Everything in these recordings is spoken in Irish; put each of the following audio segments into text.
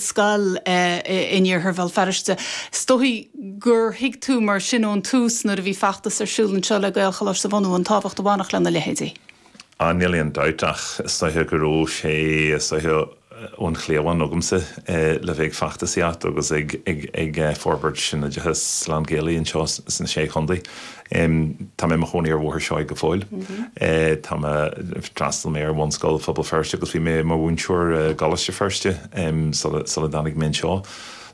scoil in iarthar Bhéal Feirste. Is dóichí gur thuig tú mar sin ón tús nuair a bhí feachtas ar siúl anseo le Gaelcholáiste a bhunú an tábhacht a bhainfeadh lena leithéidí. Á níl aon dabht ach is dóiche go raibh sé, is dóiche ón chliabhán agamsa le bheith ag feachtasaíocht agus ag forbairt an oideachais lán-Ghaelaigh anseo sna Sé Chontae. em tá mé i mo chónaí ar Bhóthar Seoighe go fóill eh tá mé d'fhreastail mé ar bhunscoil Phobal Feirste agus bhí mé i mo mhúinteoir i gColáiste Feirste em sula sula dtáinig mé anseo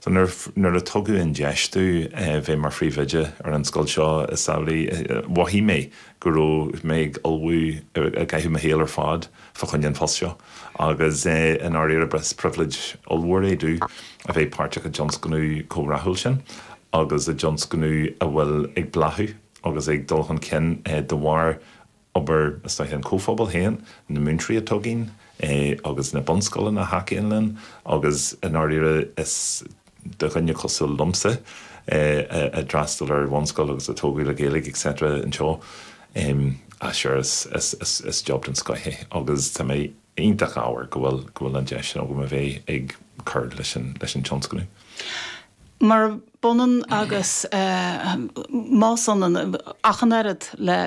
so nuair nuair a tugadh an deis domh bheith mar phríomhoide ar an scoil seo is amhlaidh eh mhothaigh mé go raibh mé ag ullmhú i gcaitheamh mo shaol ar fad fá choinne an phost seo agus i ndáiríre ba phribhléid ollmhór é domh a bheith páirteach i dtionscnamh chomh rathúil sin agus i dtionscnamh a bhfuil ag bláthú agus ag dul chun cinn de bharr obair, is é an chomhphobail féin, na múinteoirí a thugann é agus na bunscoileanna a thacaíonn linn agus i ndáiríre is. do dhuine cosúil liomsa a d'fhreastail ar bhunscoil agus a tógadh le Gaeilge etc anseo ah sure is job den scoth é agus tá mé iontach ádhúil go bhfuil an deis sin agam a bheith ag cur leis an tionscnamh. Murab ionann agus más ionann ach an oiread le.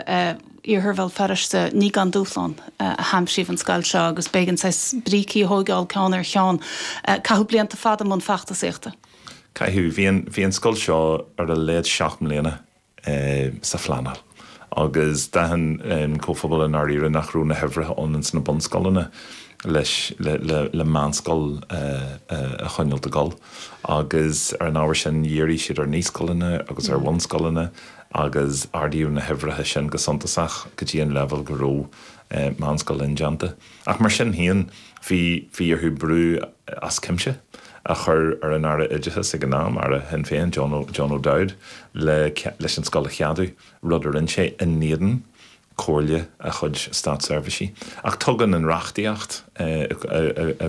Iarthar Bhéal Feirste, ní gan dúshlán a haimsíodh an scoil seo agus b'éigean saghas brící a thóigeáil ceann ar cheann. Caitheadh blianta fada i mbun feachtasaíochta. Caitheadh. Bhí an, bhí an scoil seo ar a laghad seacht mbliana sa phleanáil agus d'aithin an comhphobal i ndáiríre nach raibh na huimhreacha ann ins na bunscoileanna leis, le, le, le meánscoil a choinneáil ag gabháil agus ar an ábhar sin dhírigh siad ar naíscoileanna agus ar bhunscoileanna. agus ardaíodh na huimhreacha sin go suntasach go dtí an leibhéal go raibh meánscoil indéanta. Ach mar sin féin, bhí bhí orthu brú as cuimse a chur ar an Aire Oideachais ag an am, Aire Shinn Féin, John O'Dowd, le leis an scoil a cheadú, rud a rinne sé, in éadan Comhairle a chuid státseirbhíseach. Ach tugann an reachtaíocht, i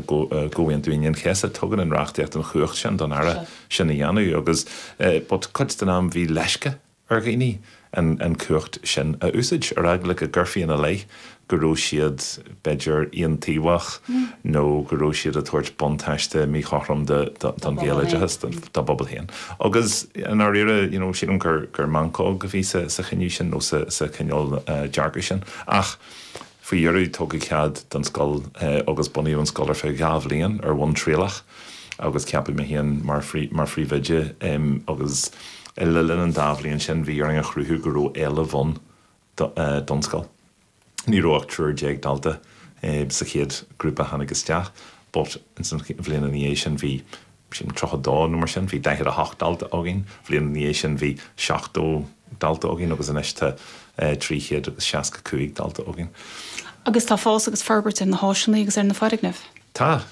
gComhaontú Aoine an Chéasta, tugann an reachtaíocht an chumhacht sin don Aire sin a dhéanamh agus cuid den am bhí leisce ar dhaoine an chumhacht sin a úsáid, ar eagla go gcuirfí ina leith go raibh siad. b'fhéidir, aontaobhach nó go raibh siad ag tabhairt buntáiste míchothrom don Ghaeloideachas, dá bpobal féin. Agus i ndáiríre, you know, sílim gur meancóg a bhí sa chinneadh sin nó sa chineál dearcaidh sin. Ach faoi dheireadh, tugadh cead don scoil agus bunaíodh an scoil ar feadh dhá bhliain ar bhonn trialach agus ceapadh mé féin mar phríomhoide. Agus le linn an dá bhliain sin, bhí orainn a chruthú go raibh éileamh ann don scoil. Ní raibh ach triúr déag dalta sa chéad grúpa a tháinig isteach but ins an bhliain ina dhiaidh sin bhí b'shin tríocha dó nó mar sin, bhí daichead a hocht dalta againn, bhliain ina dhiaidh sin bhí seachtó dalta againn agus anois tá trí chéad agus seasca cúig dalta againn. Agus tá fás agus forbairt ar na háiseanna agus ar na foirgnimh? Tá,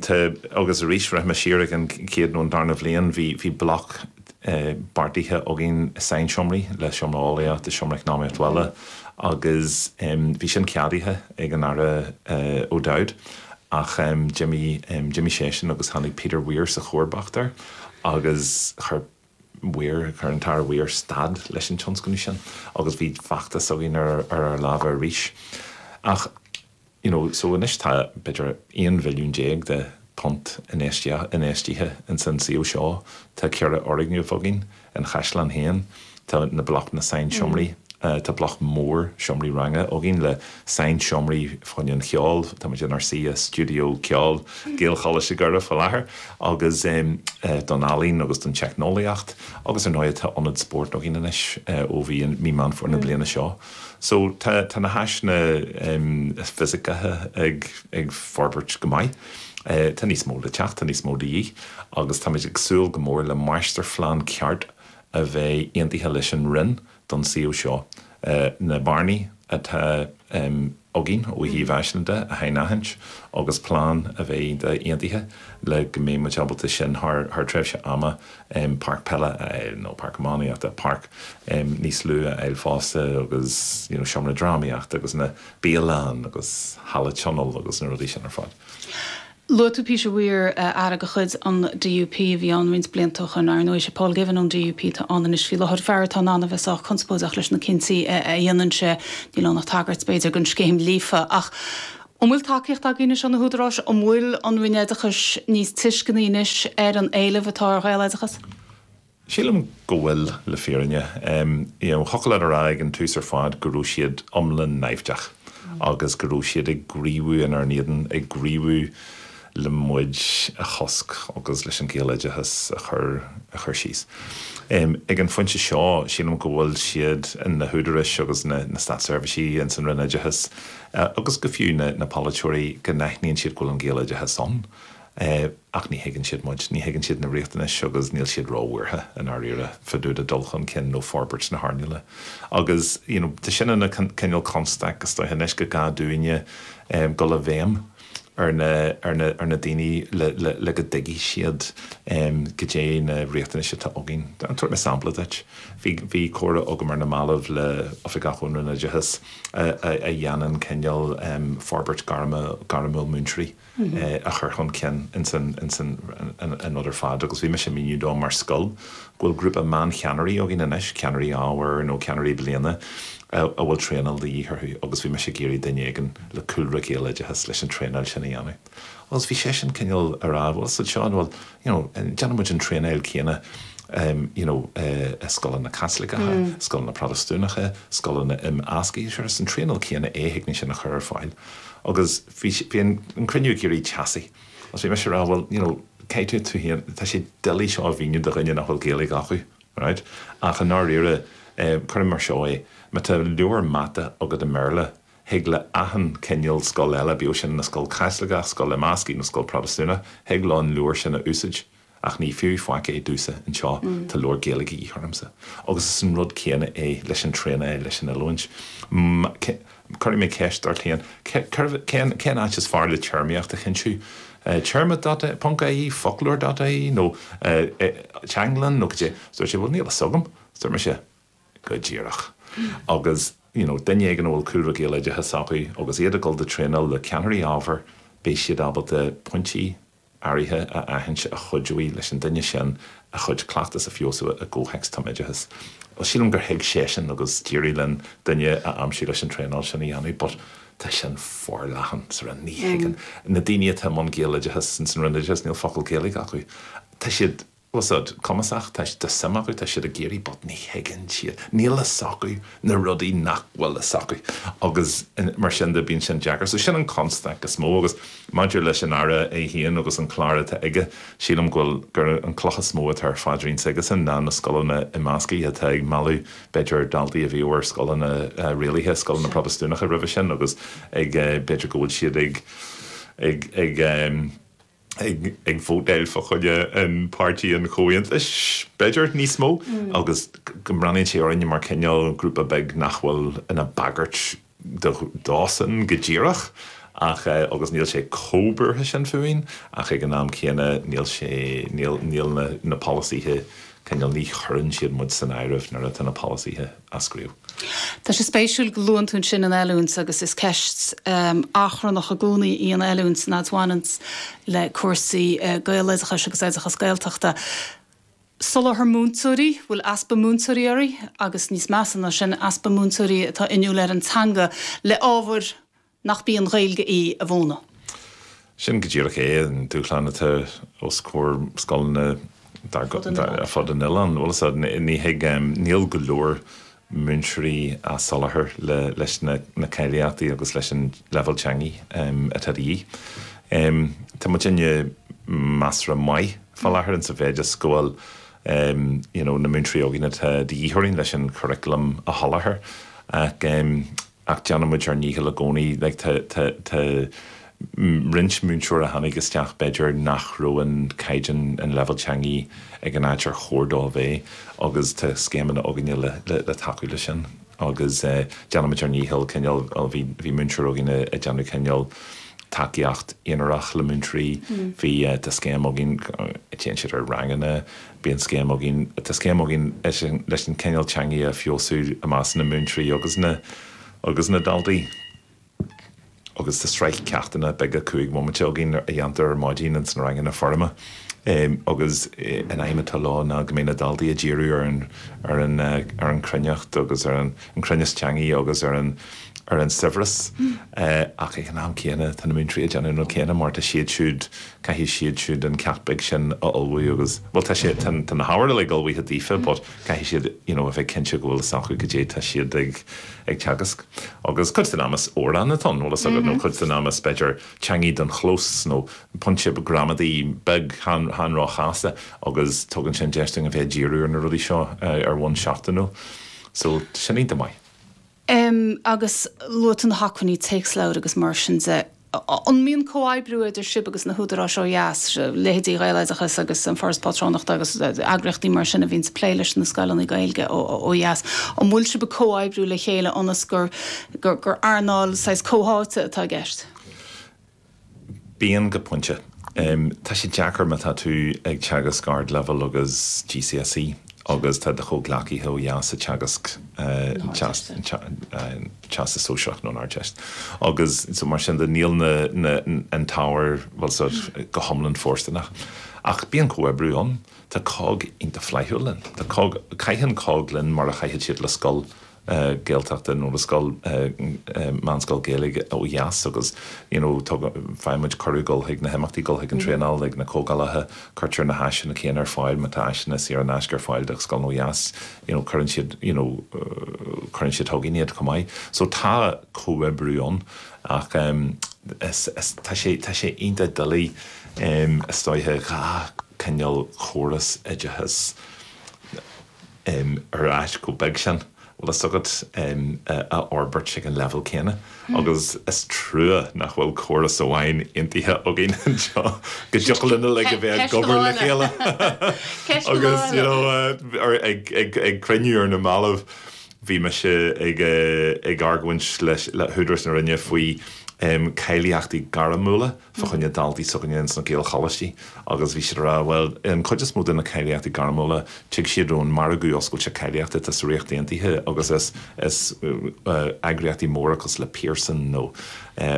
tá agus arís rachaidh mé siar ag an chéad nó an darna bhliain bhí, bhí bloc beartaithe againn sainseomraí le Seomra Eolaíochta is Seomra Eacnamaíocht Bhaile agus bhí sin ceadaithe ag an Aire O'Dowd ach d'imigh seisean agus tháinig Peter Weir sa chomharbacht air agus chuir Weir, chuir an tAire Weir stad leis an tionscnamh sin agus bhí feachtas againn ar ár lámha arís ach. you know so anois tá b'fhéidir aon mhilliún déag de phunt infheistithe ins an suíomh seo, tá ceithre fhoirgneamh againn, an Chaisleán féin, tá na bloc na sainseomraí, tá bloc mór seomraí ranga againn le sainseomraí fá choinne an cheoil, táimid inár suí i stiúideo ceoil Ghaelcholáiste Dhoire i láthair agus em don ealaín agus don teicneolaíocht agus ar ndóighe tá ionad spóirt againn anois ó bhí mí Mheán Fómhair na bliana seo. So tá tá na háiseanna em fisiceacha ag ag forbairt go maith. Eh tá níos mó le teacht, tá níos mó de dhíth agus táimid ag súil go mór le máistirphlean ceart a bheith aontaithe leis an Roinn don suíomh seo. Eh na bearnaí atá em. againn ó thaobh áiseanna a shainaithint agus plean a bheith aontaithe le go mbeidh muid ábalta sin thar tréimhse ama páirc peile a fháil nó páirc iománaíochta, páirc níos lú a fháil fosta agus you know seomra drámaíochta agus na bialann agus halla tionóil agus na rudaí sin ar fad. Luaigh tú Peter Weir, Aire de chuid an DUP a bhí ann roinnt blianta ó shoin, ar ndóigh. Is é Paul Givan ón DUP atá ann anois faoi láthair, fear atá in ann a bheith sách conspóideach leis na cinntí a dhéanann sé. Níl ann ach tagairt, b'fhéidir, don scéim Líofa. Ach an bhfuil tacaíocht agaibh anois ó na húdaráis? An bhfuil an Roinn Oideachais níos tuisceanaí anois ar an éileamh atá ar Ghaeloideachas? Sílim go bhfuil, le fírinne. Thiocfadh linn a rá ag an tús ar fad go raibh siad iomlán naimhdeach agus go raibh siad ag gníomhú inár n-éadan, ag gníomhú le muid a chosc agus leis an Ghaeloideachas a chur síos. Ag an phointe seo, sílim go bhfuil siad, na húdaráis agus na státseirbhísigh ins an Roinn Oideachais agus go fiú na polaiteoirí, go n-aithníonn siad go bhfuil an Gaeloideachas ann. é, ach ní thuigeann siad muid, ní thuigeann siad na riachtanais agus níl siad róbhuartha i ndáiríre fá dtaobh de dul chun cinn nó forbairt na hearnála. Agus you know tá sin ina cineál constaic astoigh anois go gcaithfidh muidinne dul i bhfeidhm ar na, ar na, ar na daoine le, le, le go dtuigfidh siad goidé na riachtanais atá againn. Tabharfaidh mé sampla duit. Bhí, bhí comhrá agam ar na mallaibh le Oifigeach ón Roinn Oideachais a, a, a dhéanann cineál forbairt gairme, gairmiúil múinteoirí. a chur chun cinn ins an rud ar fad agus bhí mise ag míniú dó mar scoil go bhfuil grúpa meán cheannairí againn anois, ceannairí ábhair nó ceannairí bliana a bhfuil traenáil de dhíth orthu agus bhí mise ag iarraidh duine éigin le cúlra Gaeloideachas leis an traenáil sin a dhéanamh. Agus bhí seisean cineál ag rá bhuel, so Seán, bhuel, you know Déanann muid an traenáil céanna you know i scoileanna Caitliceacha, scoileanna Protastúnacha, scoileanna imeasctha, sure is an traenáil céanna é thig linn sin a chur ar fáil. Agus bhí bhí an cruinniú ag éirí teasaí agus bhí mise ag rá bhuel you know caithfidh tú féin, tá sé doiligh seo a mhíniú do dhuine nach bhfuil Gaeilge acu alright ach i ndáiríre eh cuirimis mar seo é, má tá leabhar mata agat i mBéarla, thig le achan cineál scoil eile, bíodh sin ina scoil Chaitliceach, scoil imeasctha nó scoil Protastúnach, thig leo an leabhar sin a úsáid. Ach ní fiú faic é domhsa anseo, tá leabhar Gaeilge de dhíth ormsa. Agus is an rud céanna é leis an traenáil, leis an oiliúint. Cuirfidh mé ceist ort féin, cérbh, cén, cén áit is fearr le téarmaíocht a chinntiú? Téarma dot ie, ponc ie, foclóir dot ie nó Teanglann nó cad é? Dúirt sé, bhuel níl a fhios agam. Dúirt mise. Go díreach. Agus, you know, duine éigin a bhfuil cúlra Gaeloideachas acu, agus iad ag gabháil do thraenáil le ceannairí ábhair, beidh siad ábalta pointí áirithe a aithint a chuideoidh leis an duine sin a chuid cleachtas a fheabhsú i gcomhthéacs tumoideachais. Bhuel, sílim gur thuig seisean agus d'éirigh linn duine a aimsiú leis an traenáil sin a dhéanamh but tá sin forleathan, sort of, ní thuigeann, na daoine atá i mbun Gaeloideachas, in san Roinn Oideachais, níl focal Gaeilge acu. Tá siad. Tá siad cumasach, tá suim acu, tá siad ag iarraidh but ní thuigeann siad, níl a fhios acu na rudaí nach bhfuil a fhios acu agus mar sin de bíonn sé an-deacair. So sin an constaic is mó agus maidir leis an Aire é féin agus an clár atá aige, sílim go bhfuil, gurb é an cloch is mó atá ar a phaidrín aigesan ná na scoileanna imeasctha atá ag mealladh b'fhéidir daltaí a bhíodh ar scoileanna rialaithe, scoileanna Protastúnacha roimhe sin agus ag b'fhéidir go bhfuil siad ag ag ag ag vótáil fá choinne Páirtí an Chomhaontais, b'fhéidir, níos mó, agus go mbreathnaíonn sé orainne mar cineál grúpa beag nach bhfuil ina bhagairt dósan go díreach, ach, agus níl sé chomh buartha sin fúinn, ach ag an am céanna, níl sé, níl, níl na polasaithe, cineál, ní chuireann siad muid san áireamh nuair atá na polasaithe. eascraíodh. Tá sé spéisiúil go luann tú ansin an oiliúint agus is ceist achrannach i gcónaí í an oiliúint, nó an mhaoiniúint, le cúrsaí Gaeloideachais agus oideachas Gaeltachta. Soláthar múinteoirí, bhfuil easpa múinteoirí orainn agus níos measa ná sin, easpa múinteoirí atá inniúil ar an teanga le ábhair nach í an Ghaeilge í a mhúineadh. Sin go díreach é an dúshlán atá os comhair scoileanna ar fud an oileáin. Níl go leor múinteoirí á soláthar leis na cáilíochtaí agus leis an leibhéal teangaí atá de dhíth. Tá muid ag déanamh measartha maith fá láthair sa mhéid is go bhfuil na múinteoirí againn atá de dhíth orainn leis an churaclam a sholáthar ach, ach déanann muid ár ndícheall i gcónaí. Like, tá, tá, tá roinnt múinteoir a tháinig isteach b'fhéidir nach raibh an caighdeán, an leibhéal teangaí ag an áit ar chóir dó a bheith agus tá scéimeanna againne le, le, le tacú leis sin agus eh déanann muid ár ndícheall cineál, bhuel bhí, bhí múinteoir againne ag déanamh cineál tacaíocht aonair le múinteoirí, bhí eh, tá scéim againn, téann siad ar ranganna, Bíonn scéim againn, tá scéim againn leis an cineál teangaidh a fheabhsú i measc na múinteoirí agus na agus na daltaí agus tá sraith ceachtanna beaga cúig bhomaite againn a dhéantar ar maidin ins na ranganna foirme agus an aidhm atá leo ná go mbeidh na daltaí ag díriú ar an ar an ar an chruinneacht agus ar an an cruinneas teangaidh agus ar an ar an saibhreas ach ag an am céanna tá na múinteoirí ag déanamh an rud céanna mar tá siad siúd caithfidh siad siúd an ceacht beag sin a ullmhú agus, bhuel, tá sé, tá na hábhair uilig ullmhaithe daofa but caithfidh siad, you know, a bheith cinnte go bhfuil fhios acu cad é tá siad ag, ag teagasc. Agus cuid den am is amhráin atá ann, bhfuil fhios agat, nó cuid den am is, b'fhéidir, teangaidh don chlós nó pointe gramadaí beag, chan, chan róchasta agus tugann sin deis dúinn a bheith ag díriú ar na rudaí seo ar bhonn seachtainiúil. So, sin é. Go maith. Em agus luaigh tú na hacmhainní téacsleabhair agus mar sin de. An mbíonn comhoibriú idir sibh agus na húdaráis ó dheas, leithéidí Ghaeloideachas agus An Foras Pátrúnachta agus eagraíochtaí mar sin a bhíonns ag plé leis na scoileanna Gaeilge ó dheas, an bhfuil sibh ag comhoibriú le chéile ionas gur earnáil saghas comhtháite atá i gceist? Bíonn, go pointe. Tá sé deacair má tá tú ag teagasc Ardleibhéal agus GCSE agus tá do chomhghleacaithe ó dheas ag teagasc Teastas Sóisearach nó an Ardteist agus so mar sin de níl an t-ábhar, bhfuil fhios agat, go hiomlán fóirsteanach. Ach bíonn comhoibriú ann. Tá cogg iontach flaithiúil linn. Tá cogg, caitheann cogg linn mar a chaithfeadh siad le scoil Gaeltachta nó le scoil, meánscoil Ghaeilge ó dheas agus you know tugann, faigheann muid cuireadh dul chuig na himeachtaí, dul chuig an traenáil, ag na comhdhálacha, cuirtear na háiseanna céanna ar fáil, má tá áiseanna saor in aisce ar fáil do scoileanna ó dheas you know cuireann siad you know cuireann siad chugainne iad chomh maith. So tá comhoibriú ann ach is, tá sé, tá sé iontach doiligh is dóiche dhá chineál córas oideachais, em, ar oileán chomh beag sin, bhfuil fhios agat, em, a fhorbairt ag an leibhéal céanna agus is trua nach bhfuil córas amháin aontaithe againn anseo go dtiocfadh linn uilig a bheith ag obair le chéile agus, you know, ar, ag, ag, ag cruinniú ar na mallaibh bhí mise ag, eh, ag argóint leis, le húdarais na Roinne faoi, em, cáilíochtaí gairmiúla. fá choinne daltaí s'againne ins na Gaelcholáistí agus bhí siad a rá, bhuel, an chuid is mó de na cáilíochtaí gairmiúla, tig siad ón margadh oscailte cáilíochta atá sa Ríocht Aontaithe agus is eagraíochtaí móra cosúil le Pearson nó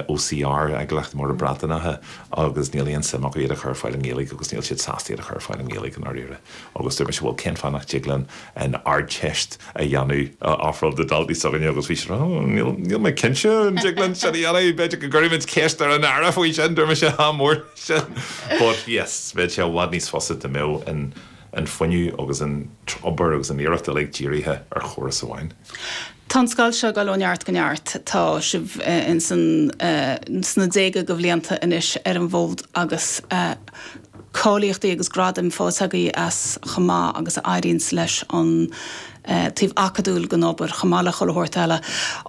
OCR, eagraíochtaí móra Breataineacha, agus níl aon suim acu iad a chur ar fáil i nGaeilge agus níl siad sásta iad a chur ar fáil i nGaeilge i ndáiríre. agus dúirt mise 'bhuel cén fáth nach dtig linn an Ardteist a dhéanamh a ofráil do dhaltaí s'againne' agus bhí siad á 'níl mé cinnte an dtig linn sin a dhéanamh, b'fhéidir go gcuirfimid ceist ar an Aire faoi sin', dúirt mise 'ádh mór le sin but yes bheadh sé i bhfad níos fusa dá mbeadh an fuinneamh agus an obair agus an iarracht uilig dírithe ar chóras amháin'. Tá an scoil seo ag dul ó neart go neart, tá sibh ins an sna déaga de bhlianta anois ar an bhfód agus. cáilíochtaí agus gradaim faighte agaibh as chomh maith agus a éiríonns leis an taobh acadúil den obair, chomh maith le chuile shórt eile.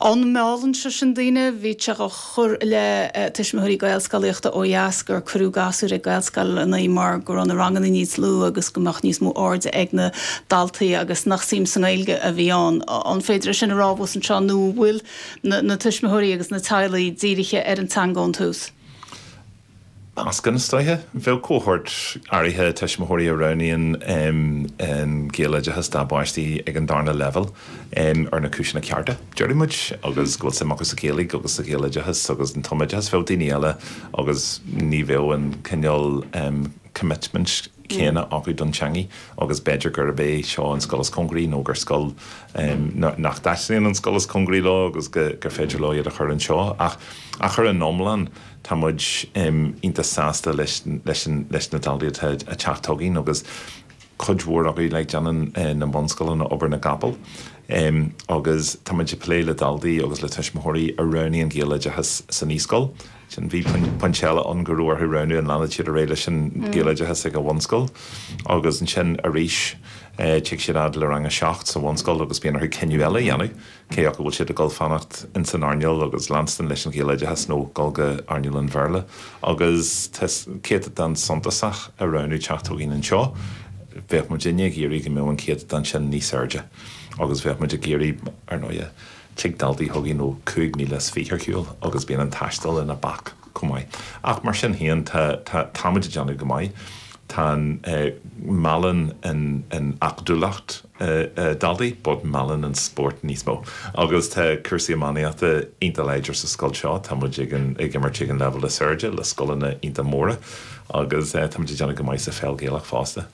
An meallann sé sin daoine? Bhítí á chur i leith tuismitheoirí Gaelscolaíochta ó dheas gur cuireadh gasúir ag Gaelscoileannaí mar go raibh na ranganna níos lú agus go mbeadh níos mó airde ag na daltaí agus nach suim sa nGaeilge a bhí ann. An féidir é sin a rá abhus anseo nó an bhfuil na tuismitheoirí agus na teaghlaigh dírithe ar an teanga ón tús? Is meascán atá ann, bheadh cohórt áirithe tuismitheoirí a roghnaíonn an Gaeloideachas dá bpáistí ag an darna leibhéal ar na cúiseanna cearta, déarfaidh muid, agus go bhfuil suim acu sa Ghaeilge agus sa Ghaeloideachas agus an tumoideachas. Bheadh daoine eile agus ní bheadh an cineál coimitmint céanna acu don teangaidh agus b'fhéidir gurb é seo an scoil is cóngaraí nó gur scoil nach dtaitníonn an scoil is cóngaraí leo agus gur féidir leo iad a chur anseo. Ach ar an iomlán. Tá muid iontach sásta leis na daltaí atá ag teacht chugainn agus cuid mhór acu, like déanann na bunscoileanna obair na gcapall agus tá muid ag plé le daltaí agus le tuismitheoirí a roghnaíonn Gaeloideachas sa naíscoil. Sin, bhí pointe eile ann go raibh orthu roghnú an leanfad siad ar aghaidh leis an Ghaeloideachas ag an bhunscoil agus ansin arís tig siad fhad le rang a seacht sa bhunscoil agus bíonn orthu cinneadh eile a dhéanamh. cé acu bhfuil siad ag dul a fhanacht ins an earnáil agus leanstan leis an Ghaeloideachas nó dul go hearnáil an Bhéarla. Agus tá céatadán suntasach ag roghnú teacht chugainn anseo. Bheadh muidinne ag iarraidh go mbeadh an céatadán sin níos airde. Agus bheadh muid ag iarraidh, ar ndóighe, tig daltaí chugainn ó chúig míle is fiche ar shiúl agus bíonn an taisteal ina bhac chomh maith. Ach mar sin féin, tá, tá, táimid ag déanamh go maith. Tá an, eh, meallann an, an acadúlacht. daltaí, but meallann an spórt níos mó agus tá cúrsaí iománaíochta iontach láidir sa scoil seo. Tá muid ag an ag imirt ag an leibhéal is airde le scoileanna iontach móra agus tá muid ag déanamh go maith sa pheil Ghaelach fosta.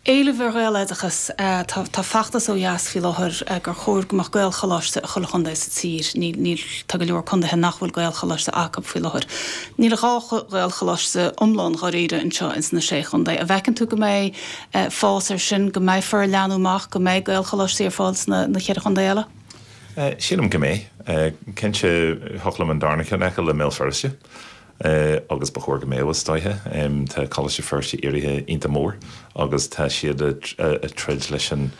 Éileamh ar Ghaeloideachas, Tá tá feachtas ó dheas faoi láthair gur chóir go mbeadh Gaelcholáiste i chuile chontae sa tír. Níl níl tá go leor contaetha nach bhfuil Gaelcholáiste acu faoi láthair. Níl ach dhá Ghaelcholáiste iomlán dháiríre anseo ins na Sé Chontae. An bhfeiceann tú go mbeidh fás ar sin, go mbeifear ag leathnú amach, go mbeidh Gaelcholáistí ar fáil sna ceithre chontae eile? Sílim go mbeidh. Cinnte, thiocfadh liom an darna ceann a fheiceáil i mBéal Feirste agus ba chóir go mbeadh, is dóiche. Tá Coláiste Feirste éirithe iontach mór agus tá siad ag troid leis an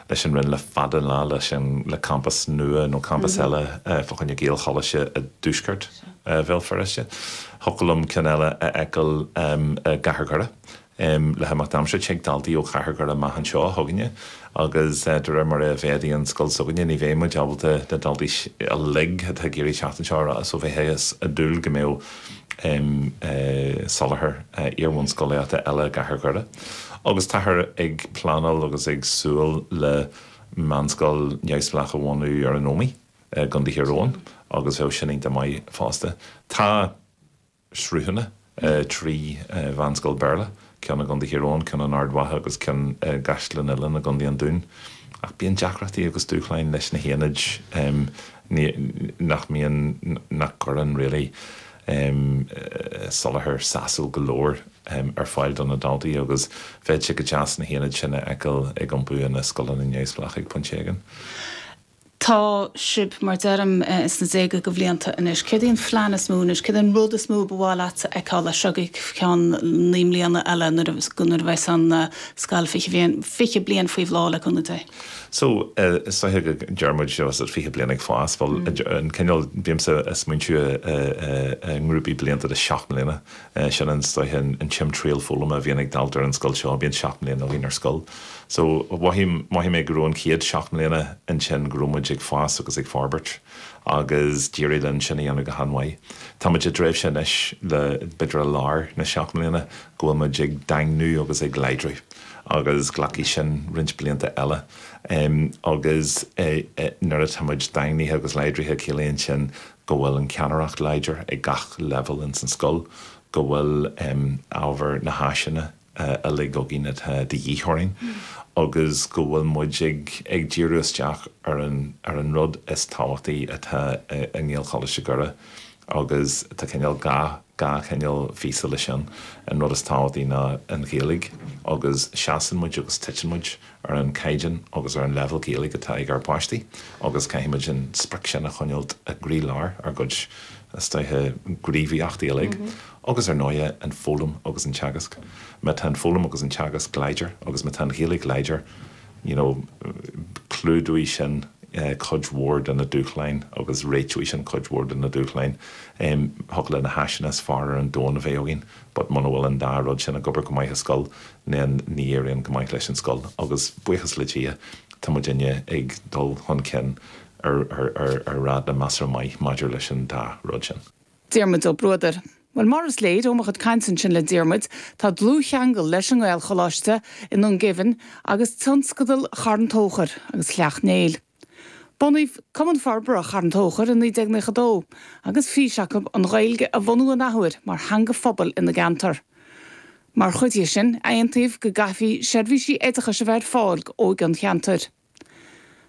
Roinn le fada an lá le campas nua nó campas eile fá choinne Gaelcholáiste i dtuaisceart Bhéal Feirste. Thiocfadh liom ceann eile a fheiceáil i gcathair Dhoire. Um le himeacht aimsire tig daltaí ó chathair Dhoire amach anseo chugainne agus de réir mar a mhéadaíonn an scoil s'againne ní bheidh muid ábalta na daltaí uilig atá ag iarraidh teacht anseo a rá so bheifí ag dúil go mbeadh um soláthar iarbhunscolaíochta eile i gcathair Dhoire agus táthar ag pleanáil agus ag súil le meánscoil neamhspleách a bhunú ar an Ómaigh i gContae Thír Eoghain agus bheadh sin iontach maith fosta. Tá. sruthanna i dtrí mheánscoil Béarla, ceann i gContae Thír Eoghain, ceann in Ard Mhacha agus ceann i gCaisleán Uileann i gContae an Dúin. Ach bíonn deacrachtaí agus dúshláin leis na haonaid nach mbíonn, nach gcuireann really, soláthar sásúil go leor ar fáil do na daltaí agus bheadh sé go deas na haonaid sin a fheiceáil ag iompú ina scoileanna neamhspleácha ag pointe éigin. tá sibh, mar deirim, sna déaga de bhlianta anois. Céard í an plean is mó anois? Céard é an rud is mó ba mhaith leatsa a fheiceáil as seo go ceann naoi mbliana eile, nuair a bheas an scoil fiche bliain faoi bhláth, le cúnamh Dé? So, is dóiche go ndeir muid seo fiche bliain ag fás, bhuel, an cineál, bímse ag smaointiú i ngrúpaí blianta de seacht mbliana, sin an saghas an timthriall foghlama a bhíonn ag dalta ar an scoil so bíonn seacht mbliana i meánscoil so mhothaím mothaigh mé go raibh an chéad seacht mbliana ansin go raibh muid ag fás agus ag forbairt agus d'éirigh linn sin a dhéanamh go han mhaith táimid i dtréimhse anois b'fhéidir i lár na seacht mbliana go bhfuil muid ag daingniú agus ag láidriú agus glacfaidh sin roinnt blianta eile em agus eh eh nuair a táimid daingnithe agus láidrithe ciallaíonn sin go bhfuil an ceannaireacht láidir ag gach leibhéal ins an scoil, go bhfuil ábhar na háiseanna uilig againn atá de dhíth orainn agus go bhfuil muid ag díriú isteach ar an rud is tábhachtaí atá i nGaelcholáiste Dhoire agus tá cineál gach Gach cineál físe leis sin. An rud is tábhachtaí ná an Ghaeilge agus seasann muid agus titeann muid ar an chaighdeán agus ar an leibhéal Gaeilge atá ag ár bpáistí agus caithfidh muid an sprioc sin a choinneáilt i gcroílár ár gcuid straitéisí gníomhaíochtaí uilig agus ar ndóighe an foghlaim agus an teagasc. Má tá an foghlaim agus an teagasc láidir agus má tá an Ghaeilge láidir, you know clúdóidh sin cuid mhór de na dúshláin agus réiteoidh sin cuid mhór de na dúshláin em thiocfadh le na háiseanna is fearr ar an domhan a bheith againn but muna bhfuil an dá rud sin ag obair go maith i scoil then ní éiríonn go maith leis an scoil agus buíochas le Dia tá muidinne ag dul chun cinn ar ar ar ar ráta measartha maith maidir leis an dá rud sin. Diarmaid Ua Bruadair, Bhuel, mar is léir ó mo chuid cainte ansin le Diarmaid, tá dlúthcheangal leis an nGaelcholáiste i nDún Geimhin agus tionscadal Charn Tóchair agus Shleacht Néill. Bunaíodh Cumann Forbartha Charn Tóchair i 1992 agus fís acu an Ghaeilge a bhunú an athuair mar theanga phobail ina gceantar. Mar chuid dhe sin, aontaíodh go gcaithfí seirbhísí oideachais a bheith ar fáil d'óige an cheantair.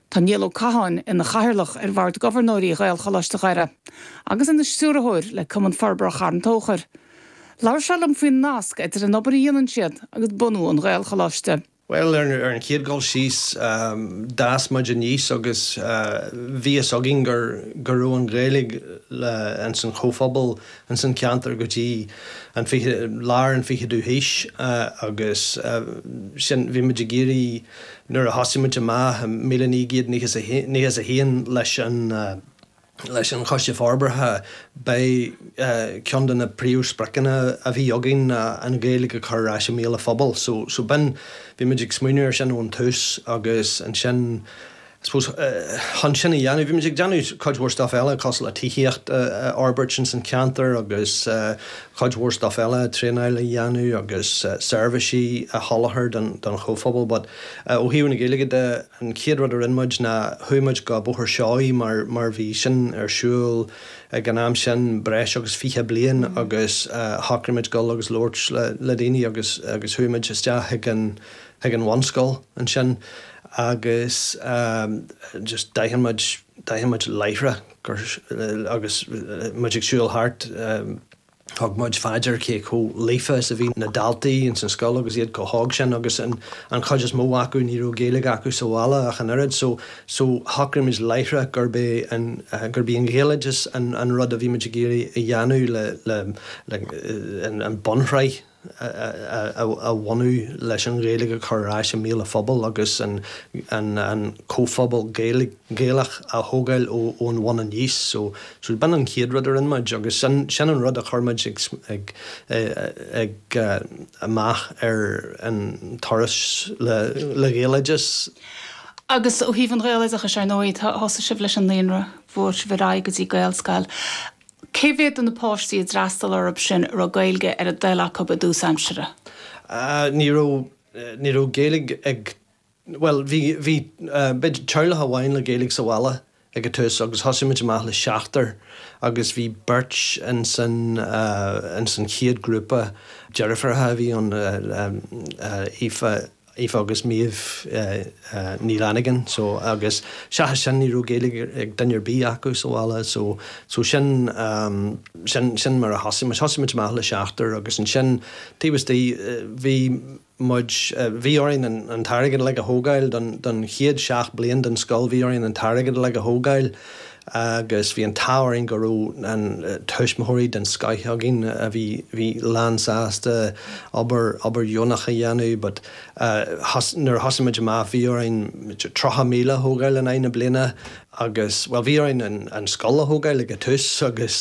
Tá Niall Ó Catháin ina Chathaoirleach ar Bhord Gobharnóirí Ghaelcholáiste Dhoire agus ina Stiúrthóir le Cumann Forbartha Charn Tóchair. Labhair sé liom faoin nasc idir an obair a dhéanann siad agus bunú an Ghaelcholáiste. Bhuel, ar an chéad dul síos, d'fhás muid aníos agus bhí fhios againn go raibh an Ghaeilge ins an chomhphobal ins an cheantar go dtí an fiche, lár an ficheadú haois agus sin, bhí muid ag iarraidh, Nuair a thosaigh muid amach i míle naoi gcéad nócha is a haon leis an Choiste Forbartha b'é cionn de na príomh spriocanna a bhí againn ná an Ghaeilge a chur ar ais i mbéal an phobail so b'in, bhí muid ag smaoineamh ar sin ón tús agus ansin, I suppose, chun sin a dhéanamh, bhí muid ag déanamh cuid mhór stuff eile, cosúil le tithíocht a fhorbairt ins an cheantar agus cuid mhór stuff eile, traenáil a dhéanamh agus seirbhísí a sholáthar don chomhphobal. But, ó thaobh na Gaeilge de, an chéad rud a rinne muid ná, chuaigh muid go Bóthar Seoighe mar, mar bhí sin ar siúl ag an am sin, breis agus fiche bliain agus shocraigh muid dul agus labhairt le, le daoine agus, agus chuaigh muid isteach ag an, chuig an bhunscoil ansin agus just d'aithin muid, d'aithin muid láithreach gur, agus muid ag siúl thart, thug muid fá dear cé chomh líofa is a bhí na daltaí ins an scoil agus iad chomh hóg sin agus an, an chuid is mó acu ní raibh Gaeilge acu sa bhaile ach an oiread so, so shocraigh muid láithreach gurb é an, gurb í an Ghaeloideachas an, an rud a bhí muid ag iarraidh a dhéanamh le, le, le an bunshraith. a bhunú leis an Ghaeilge a chur ar ais i mbéal an phobail agus an comhphobal Gaelach a thógáil ón bhun aníos. So b'in an chéad rud a rinne muid agus sin an rud a chuir muid amach ar an turas le Gaeloideachas. Agus ó thaobh an Ghaeloideachais, ar ndóigh, thosaigh sibh leis an naíonra, bhog sibh ar aghaidh go dtí Gaelscoil Cé mhéad de na páistí a d'fhreastal orthu sin a raibh Gaeilge ar a dtoil acu i dtús aimsire? Ní raibh, ní raibh Gaeilge ag, bhuel bhí, bhí, b'fhéidir teaghlach amháin le Gaeilge sa bhaile ag an tús agus thosaigh muid amach le seachtar agus bhí beirt ins an, ins an chéad ghrúpa, deirfiúracha a bhí ann, Aoife, Aoife agus Méabh Ní Fhlannagáin so agus seachas sin ní raibh Gaeilge ag duine ar bith acu sa bhaile so so sin sin sin mar a thosaigh muid. Thosaigh muid amach le seachtar agus ansin taobh istigh bhí muid bhí orainn an t-airgead uilig a thógáil don don chéad seacht bliain den scoil bhí orainn an t-airgead uilig a thógáil eh agus bhí an t-ádh orainn go raibh tuismitheoirí den scoith againn a bhí lánsásta obair dheonach a dhéanamh but nuair a thosaigh muid amach bhí orainn tríocha míle a thógáil in aghaidh na bliana agus bhuel bhí orainn an scoil a thógáil ag an tús agus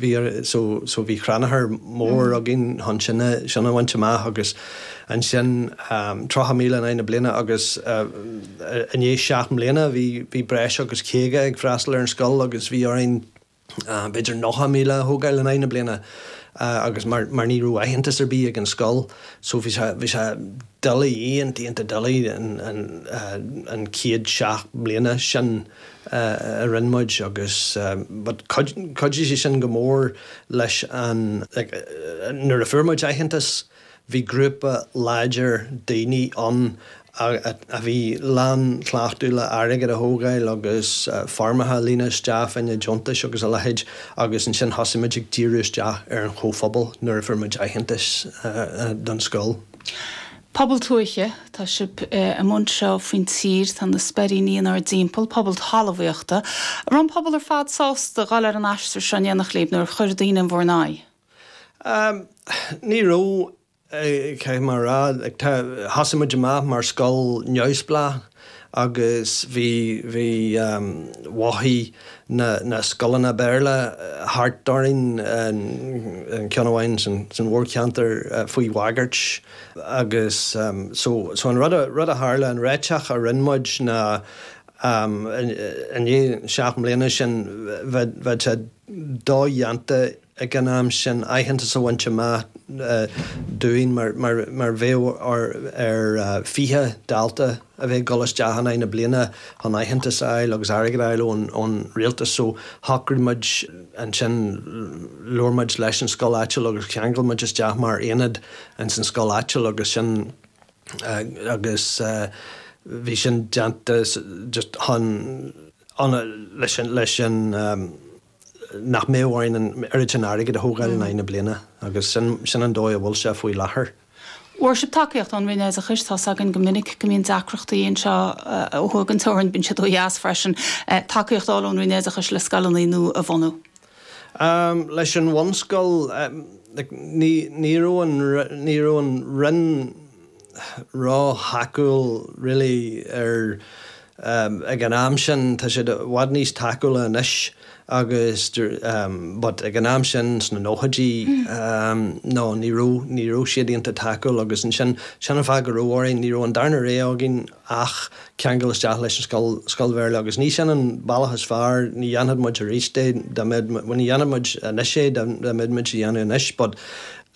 bhí so so bhí crannchur mór againn chun sin a bhaint amach agus ansin tríocha míle in aghaidh na bliana agus I ndiaidh seacht mbliana bhí breis agus caoga ag freastal ar an scoil agus bhí orainn b'fhéidir nócha míle a thógáil in aghaidh na bliana agus mar ní raibh aitheantas ar bith ag an scoil so bhí sé bhí sé doiligh, ionta, ionta doiligh an chéad seacht mbliana sin a rinne muid agus but chuidigh sé sin go mór leis an like nuair a fuair muid aitheantas. Bhí grúpa láidir daoine ann a bhí lán cleachtadh le hairgead a thógáil agus foirmeacha a líonadh isteach fá choinne deontais agus a leithéid agus ansin thosaigh muid ag díriú isteach ar an chomhphobal nuair a fuair muid aitheantas don scoil. Pobal tuaithe, tá sibh i mbun seo faoin tír, tá na Speiríní inár dtimpeall, pobal talmhaíochta. An raibh an pobal ar fad sásta dul ar an aistear seo in aon chor, Liam, nó ar chuir daoine in bhur n-aghaidh? Ní raibh, caithfidh mé a rá. Thosaigh muid amach mar scoil neamhspleách agus bhí, bhí, mhothaigh na, na scoileanna Béarla thart orainn, aon cheann amháin san mhórcheantar faoi bhagairt agus so, so an rud a, rud a tharla, an ráiteas a rinne muid ná i ndiaidh seacht mbliana sin bheadh, bheadh sé dodhéanta ag an am sin, aitheantas a bhaint amach dúinn, mar, mar, mar bheadh ar, ar fiche dalta a bheith ag dul isteach in aghaidh na bliana chun aitheantas a fháil agus airgead a fháil ón, ón rialtas. So shocraigh muid ansin, labhair muid leis an scoil áitiúil agus cheangail muid isteach mar aonad ins an scoil áitiúil agus sin, agus bhí sin déanta just chun, chun, leis an, leis an. nach mbeadh orainn an oiread sin airgid a thógáil in aghaidh na bliana agus sin an dóigh a bhfuil sé faoi láthair. Muirse, tacaíocht ón Roinn Oideachais, tá 's againn go minic go mbíonn deacrachtaí anseo ó thuaidh den teorainn, bíonn siad ó dheas freisin, tacaíocht a fháil ón Roinn Oideachais le scoileanna nua a bhunú. Leis an bhunscoil, like ní raibh an, ní raibh an Roinn, ró-thacúil really ar ag an am sin, tá siad i bhfad níos tacúla anois agus but ag an am sin sna nóchaidí no ní raibh, ní raibh siad iontach tacúil agus ansin, sin an fáth go raibh orainn, ní raibh an darna rogha againn ach ceangal isteach leis an scoil, scoil Bhéarla agus ní sin an bealach is fearr, ní dhéanfadh muid aríst é dá mbeadh, ní dhéanfadh muid anois é dá mbeadh muid á dhéanamh anois but,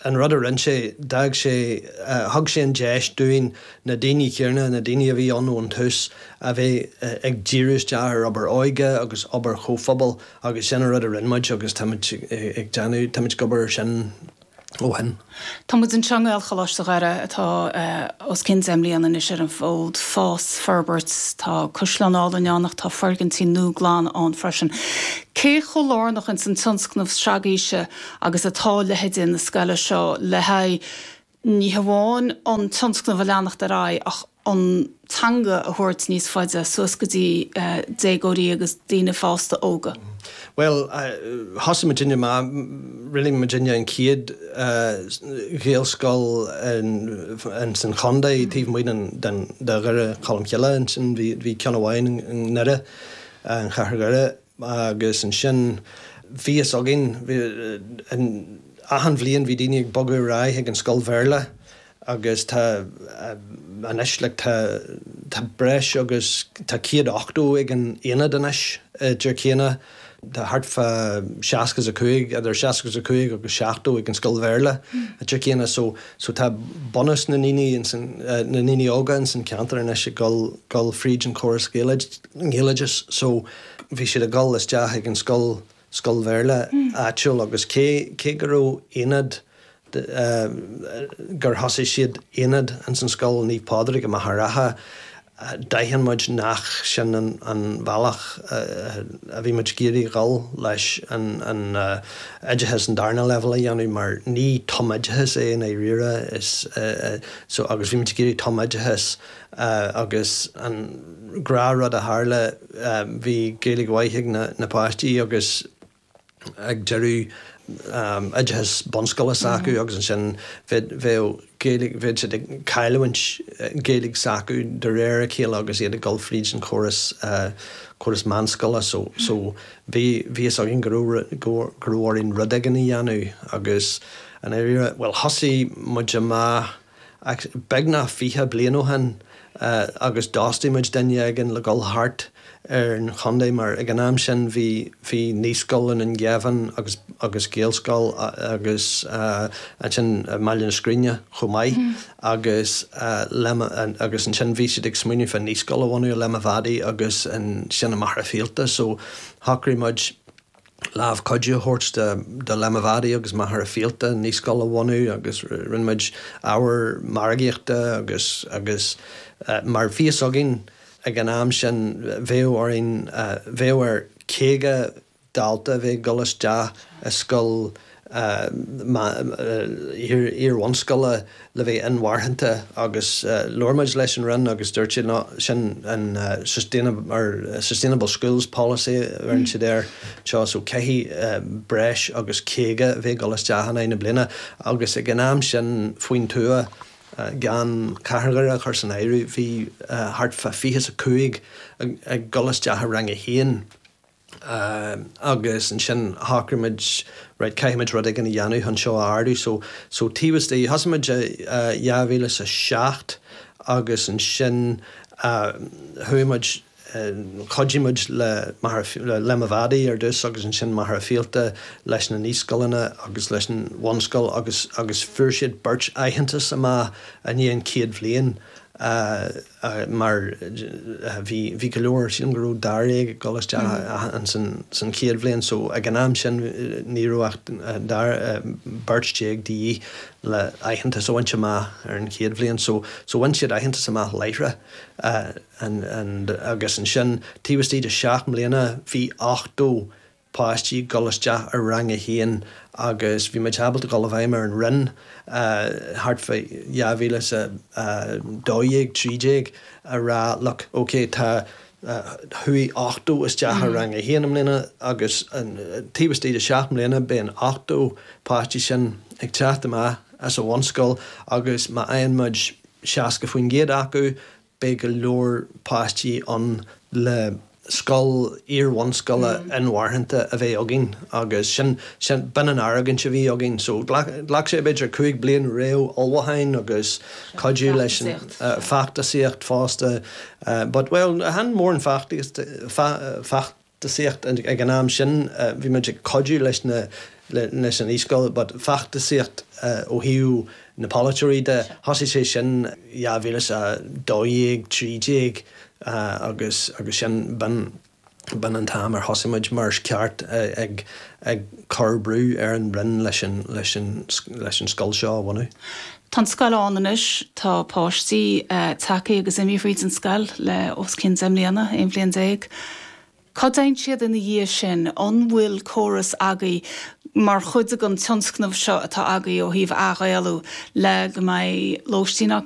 An rud a rinne sé, d'fhág sé, thug sé an deis dúinn, na daoine chéanna, na daoine a bhí ann ón tús, a bheith ag díriú isteach ar obair óige agus obair chomhphobail agus sin an rud a rinne muid agus táimid ag déanamh, táimid ag obair air sin ó shin. Tá muid anseo i nGaelcholáiste Dhoire atá os cionn deich mbliana anois ar an bhfód, fás, forbairt, tá caisleán álainn ann ach tá foirgintí nua glan ann freisin. Cé chomh lárnach ins an tionscnamh straigíse agus atá leithéidí na scoile seo le haghaidh ní hamháin an tionscnamh a leanacht ar aghaidh ach an teanga a thabhairt níos faide suas go dtí déagóirí agus daoine fásta óga. Bhuel, thosaigh muidinne, rinne muidinne an chéad Ghaelscoil ins an chontae taobh amuigh de Dhoire Cholmcille ansin, bhí ceann amháin i nDoire, i gCathair Dhoire, Agus ansin bhí fhios againn, achan bhliain bhí daoine ag bogadh ar aghaidh chuig an scoil Bhéarla agus tá, anois like tá, tá breis agus, tá 180 ag an aonad anois i dTír Chiana, tá thart fá seasca is a cúig, idir seasca is a cúig agus seachtó ag an scoil Bhéarla i dTír Chiana so, so tá bunús na ndaoine, na ndaoine óga ins an cheantar anois ag dul, dul fríd an chóras Gaeloideas. Gaeloideas so bhí siad ag dul isteach ag an scoil, scoil Bhéarla áitiúil agus cé, cé go raibh Aonad de, gur thosaigh siad Aonad ins an scoil Naomh Pádraig i Machaire Rátha, d'aithin muid nach sin an, an bhealach a bhí muid ag iarraidh dhul leis an, an oideachas, an darna leibhéal a dhéanamh mar ní tumoideachas é i ndáiríre is, so agus bhí muid ag iarraidh tumoideachas. agus an gnáthrud a tharla bhí Gaeilge mhaith ag na páistí agus ag deireadh oideachas bunscoile s'acu agus ansin bheadh Gaeilge, bheadh siad ag cailliúint Gaeilge s'acu de réir a chéile agus iad ag dul fríd an chóras, córas meánscoile so, so bhí a fhios againn go raibh, go raibh orainn rud éigin a dhéanamh agus i ndáiríre, bhuel thosaigh muid amach, ach beagnach fiche bliain ó shin agus d'fhostaigh muid duine éigin le dhul thart ar an chontae mar ag an am sin bhí Naíscoil i nDún Geimhin agus Gaelscoil agus ansin i mBaile na Scríne chomh maith agus ansin bhí siad ag smaoineamh ar Naíscoil a bhunú i Léim an Mhadaidh agus ansin i Machaire Fíolta so shocraigh muid lámh chuidithe a thabhairt do Léim an Mhadaidh agus Machaire Fíolta naíscoil a bhunú agus rinne muid ábhar margaíochta agus agus mar bhí fhios againn ag an am sin bheadh orainn bheadh ar 50 dalta a bheith ag dul isteach i scoil iar-bhunscoile le bheith inmharthanta agus labhair muid leis an Roinn agus dúirt siad sin an sustainable schools policy a bheireann siad air anseo so caithfidh breis agus 50 a bheith ag dul isteach in aghaidh na bliana agus ag an am sin faoin tuath gan Cathair Dhoire a chur san áireamh bhí thart fá fiche is a cúig ag dul isteach i rang a haon. agus ansin shocraigh muid right caithfidh muid rud éigin a dhéanamh chun seo a ardú so so taobh istigh thosaigh muid i 2007 agus ansin chuaigh muid chuidigh muid le Machaire Léim an Mhadaidh ar dtús agus ansin Machaire Fíolta leis na naíscoileanna agus leis an bhunscoil agus agus fuair siad beirt aitheantas amach i ndiaidh an chéad bhliain mar bhí go leor, sílim go raibh dáréag ag dul isteach ann san chéad bhliain so ag an am sin ní raibh ach dár, beirt déag de dhíth le aitheantas a bhaint amach ar an chéad bhliain so, so bhain siad aitheantas amach láithreach agus ansin taobh istigh de seacht mbliana bhí ochtó páistí ag dul isteach i rang a haon agus bhí muid ábalta dul i bhfeidhm ar an Roinn thart fá dhá mhíle 's a dó dhéag, trí déag a rá look, ok tá, chuaigh ochtó isteach i rang a haon i mbliana agus taobh istigh de seacht mbliana beidh an ochtó páistí sin ag teacht amach as an bhunscoil agus má fhaigheann muid seasca faoin gcéad acu, beidh go leor páistí ann le scoil iar-bhunscoile inmharthanta a bheith againn agus sin, sin, b'in an argóint a bhí againn. So ghlac, ghlac sé b'fhéidir cúig bliain réamhullmhúcháin agus cuidiú leis an, feachtasaíocht fosta, but, bhuel chan mórán feachtasaíocht, feachtasaíocht ag an am sin, bhí muid ag cuidiú leis na, leis an Naíscoil but feachtasaíocht ó thaobh na polaiteoirí de, thosaigh sé sin 2012, trí déag agus, agus sin, b'in, b'in an t-am ar thosaigh muid mar is ceart ag, ag cur brú ar an Roinn leis an, leis an, leis an scoil seo a bhunú. Tá an scoil ann anois, tá páistí tagthaí agus imithe thríd an scoil le os cionn deich mbliana, aon bhliain déag. Cá dtéann siad ina dhiaidh sin? An bhfuil córas agaí mar chuid den tionscnamh seo atá agaí ó thaobh athghaelú le go mbeidh lóistín acu,